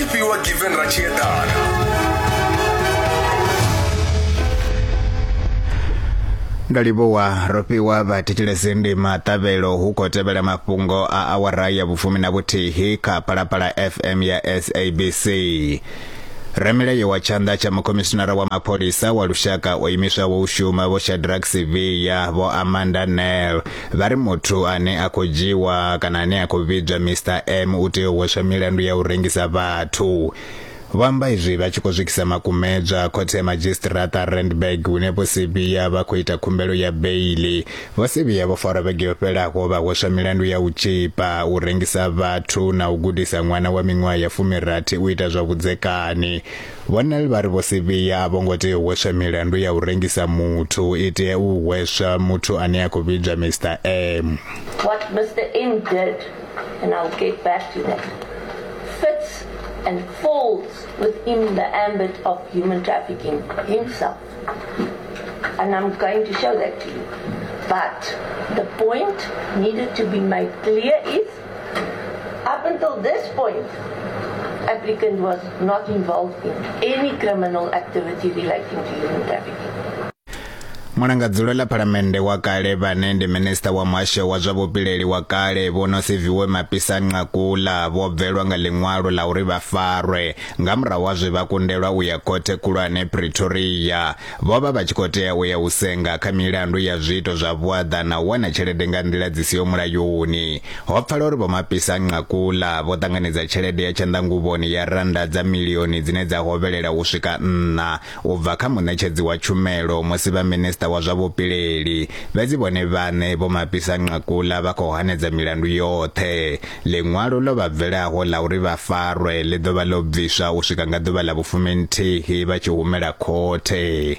If you were given Rachietar, ndo livhuwa ro fhiwa vhathetshelesi ndi maṱavhelo hu khou tevhela mafhungo a awara ya vhufumi na vhuthihi kha phalaphala fm ya sabc ramilayo wa tshanḓa tsha mukhomishinara wa mapholisa wa lushaka o imiswaho u shuma vho shadrack siviya vho amanda nel Vha ri muthu ane a khou dzhiiwa kana ane a khou vhidzwa Mister M u tea u hweswa milandu ya u rengisa vhathu. Vho amba izwi vha tshi khou swikisa makumedzwa khothe ya madzhisiṱiraṱa Randburg hune Vho Sibiya vha khou ita khumbelo ya beiḽi. Vho Sibiya vho farwa vhege yo fhelaho vha hweswa milandu ya u tzhipa, u rengisa vhathu na u gudisa ṅwana wa miṅwaha ya fumi rathi u ita zwa vhudzekani. Vho Nel vha ri Vho Sibiya a vho ngo tea u hweswa milandu ya u rengisa muthu, i tea u hweswa muthu ane a khou vhidzwa Mister M. What Mister M did, and I'll get back to that, fits and falls within the ambit of human trafficking himself. And I'm going to show that to you. But the point needed to be made clear is Up until this point, applicant was not involved in any criminal activity relating to human trafficking. Mulangadzulo ḽa phalamennde wa kale vhane ndi minista wa muhasho wa zwa vhupileli wa kale vho no Siviwe Mapisa Nqakula vho bvelwa nga ḽiṅwalo ḽa uri vha farwe nga murahu ha zwe vha kundelwa u ya khothe khulwane Pretoria Vho vha vha tshi khou tea u ya u senga kha milandu ya zwiito zwa vhuaḓa na u wana tshelede nga nḓila dzi siho mulayoni. Ho pfala uri Vho Mapisa-Nqakula vho ṱanganedza tshelede ya tshanḓanguvhoni ya rannda dza milioni dzine dza hovhelela u swika nṋa u bva kha muṋetshedzi wa tshumelo musi vha Minisṱa wa zwa Vhupileli, fhedzi vhone vhaṋe Vho Mapisa-Nqakula vha khou hanedza milandu yoṱhe. Ḽiṅwalo ḽo vha bvelaho ḽa uri vha farwe ḽi ḓo vha ḽo bviswa u swika nga ḓuvha ḽa vhufuminthihi vha tshi humela khothe.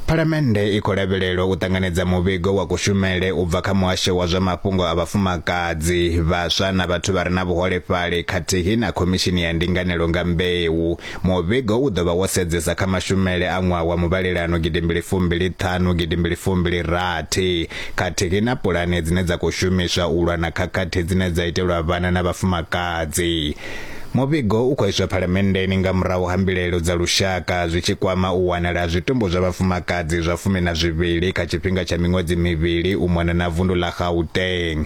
Phalamennde i khou lavhelelwa u ṱanganedza muvhigo wa kushumele u bva kha muhasho wa zwa mafhungo a vhafumakadzi, vhaswa na vhathu vha re na vhuholefhali khathihi na khomishini ya ndinganelo nga mbeu Muvhigo u ḓo vha wo sedzesa kha mashumele a ṅwaha wa muvhalelano gidimbili fumbili ṱhanu gidimbili fumbili rathi khathihi na pulane dzine dza khou shumiswa u lwa na khakhathi dzine dza itelwa vhana na vhafumakadzi. Muvhigo u khou iswa Phalamenndeni nga murahu ha mbilaelo dza lushaka zwi tshi kwama u wanala ha zwitumbu zwa vhafumakadzi zwa fumi na zwivhili kha tshifhinga tsha miṅwedzi mivhili u mona na vundu ḽa Gauteng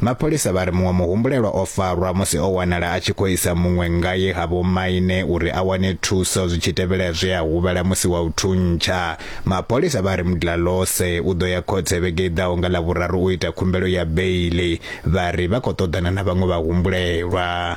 Mapholisa vha ri muṅwe muhumbulelwa o farwa musi o wanala a tshi khou isa muṅwe ngae ha vhomaine uri a wane thuso zwi tshi tevhela zwe a huvhala musi wa u thuntsha. Mapholisa vha ri Mdlalose u ḓo ya khothe vhege i ḓaho nga Ḽavhuraru u ita khumbelo ya beiḽi. Vha ri vha khou ṱoḓana na vhaṅwe vhahumbulelwa.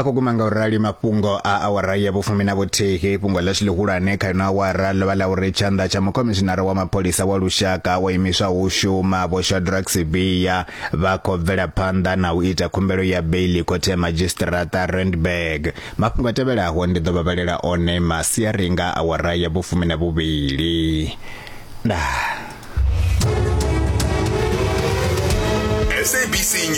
a khou guma nga u rali mafhungo a awara ya vhufumi na vhuthihi fhungo ḽashu ḽihulwane kha ino awara ḽo vha ḽa uri tshanḓa tsha mukhomishinara wa mapholisa wa lushaka wa imiswa hu shuma vho shadrack sibiya vha khou bvela phanḓa na u ita khumbelo ya beili khothe ya madzhisiṱiraṱa randburg mafhungo a tevhelaho ndi ḓo vha vhalela one masiari nga awara ya vhufumi na vhuvhili ndaa